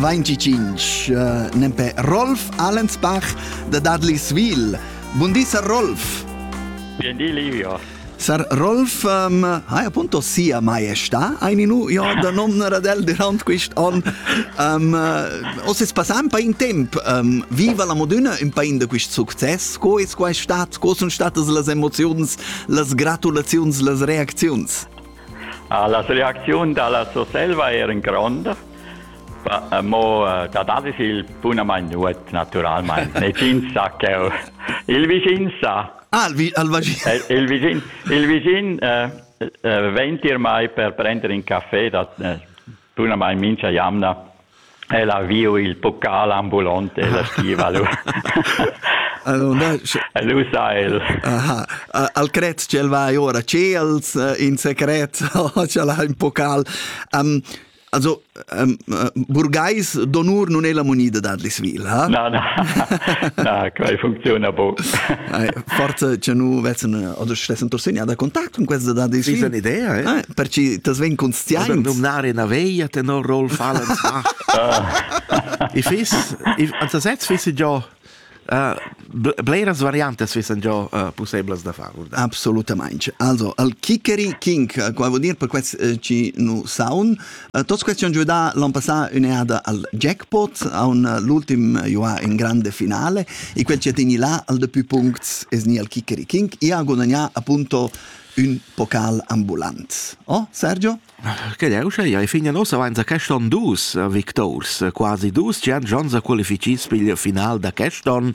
25 uh, nempe Rolf Allensbach de Dudleysville. Buondì, Sir Rolf. Buondì, Livio. Sir Rolf, um, ha appunto sia maestà, ein nu jo da nomnar ad el durant quist on. Um, uh, o se passà un po' in temp, um, viva la Modena un po' in da quist succes, co es quai stat, co sun statas las emoziuns, las gratulaziuns, las reacziuns? La reacziun da la Surselva eran gronda, mo eh, dat alles il bunamain nuot naturalmain. Negins sa cheu. Il vicin sa. Ah, il, vi, il vicin. Il vicin, il vicin eh, eh, venti ormai per prendere in caffè da eh, Bunamain mincha jamna ella viu il pocal ambulant e la stiva lu. Allora, e lu sa el. Aha, al cret ch'el va ora ciels in secret o ch'el ha un pocal. Um, also um, burgais d'onur non è la moneta da Lisville, ha? No, no, no, quai funziona buc. forse che nu vessen oder stessen torsegna da contact con questa da dis ist eine idee eh? ah, per ci das ven conscients oder nominare una veglia tenor Rolf Allen ich weiß ich also setz fisse già Uh, bleras variantes fissen già uh, possibles da far. Assolutamente. Also, al Kikeri King, qua vuol dire per questo eh, ci nu sound, Uh, tos questiun giudà l'an passà ün'eada al jackpot, aun uh, l'ultim uh, juà in grande finale, e quel ci teni là al de più puncts es ni al Kikeriking, e ha gudagnà appunto un pocal ambulant. Oh, Sergio? Che è uscì? Ai fine nossa avanza quest'on dus victors, quasi dus, ci han già qualificits per il final da quest'on.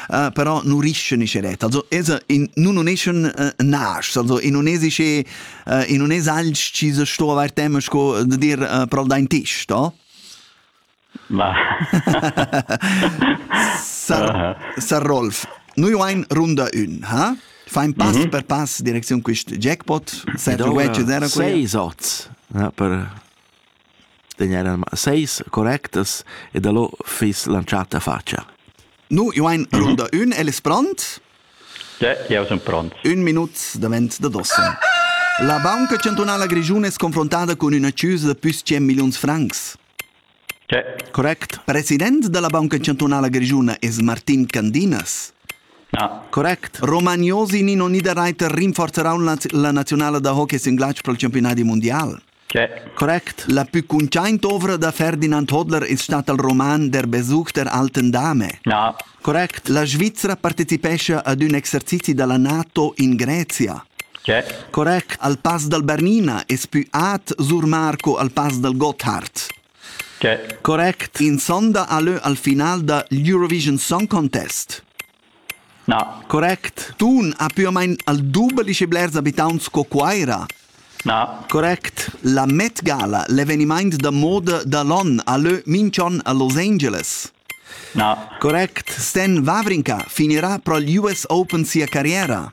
uh, però non riescono sceret also es in nun non eschan uh, nas also in non es che uh, in non es alch ci se sto aver tema sco de dir uh, pro dein tisch da ma Sar, uh-huh. Sar Rolf noi ein runda un ha Fein pass mm -hmm. per pass Direktion quist jackpot, set Wedge era quella. Sei sots. Ja, per Degn eran seis correctas e dallo fiss lantschà ta fatscha. Nu, jo ein l'unda ün, el es pront. De, jau sun pront. Ün minut davent da dossa. La banca chantunala grischuna es confrontada cun üna chüsa da püs 100 milliuns francs. Che? Correct. President da la banca chantunala grischuna es Martin Candinas. Ah. Correct. Romagnosi Nino Niederreiter rinforzerà la, la nazionala da hockey singlatsch pel championadi mundial. Correct. La pü cuntschaint ovra da Ferdinand Hodler es stat al roman Der Besuch der alten Dame. Ja. Correct. La Svizra partecipescha ad ün exercizi da la NATO in Grezia. Correct. Al Pass dal Bernina es pü at Sur Marco al Pass dal Gotthard. Correct. In sonda a lö al final da l'Eurovision Song Contest. Na, correct. Tun ha pür o main al dubel schi blers abitaunt sco Cuaira. Na, correct. La Met Gala, l'evenimaint da moda da l'on, ha lö minch'on a Los Angeles. Na, correct. Stan Wawrinka finirà pro l'US Open sia carriera.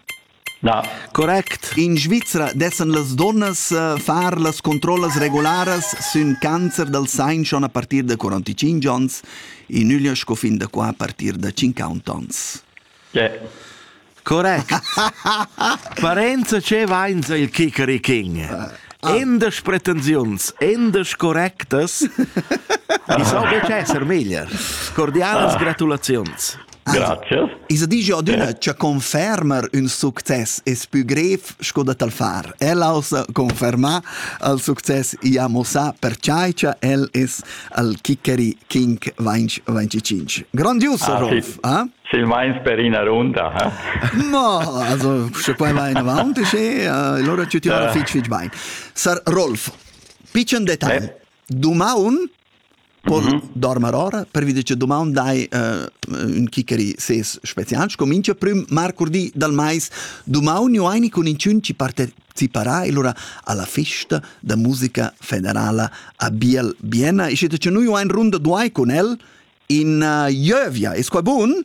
Na, correct. In Svizra dessan las dunnas eh, far las controllas regularas sün cancer dal sein schon a partir da 45 ons, in üglia sco fin da qua a partir da 50 ons. Yeah. Correct. Parenza ce vainsa il Kikeri King. Endas pretensiuns, endas correctas, i so betg esser meglier. Cordialas gratulaziuns. Grazias. I sa digia adüna cha confermer ün success es pü grev sco da tal far. Ella ossa confermà al success i ha mossà perchai cha el es al Kickeri King 25. Grandius, ah, Rolf! Ah, sì. Silmains per ina runda. Eh? No, also, sche poi vai in avanti, sche allora ci ti ora fitch fitch bain. Sar Rolf, piccen detai. Eh? Dumaun pon mm -hmm. dormir ora pervi che domand dai uh, un chicari ses spezial sco minchia prüm marcurdi dal mais dumaun aini con incun ci parteciparà e lura alla festa da musica federala a Biel Biena e siete che noi ein runda duai con el in uh, Jövia e squabun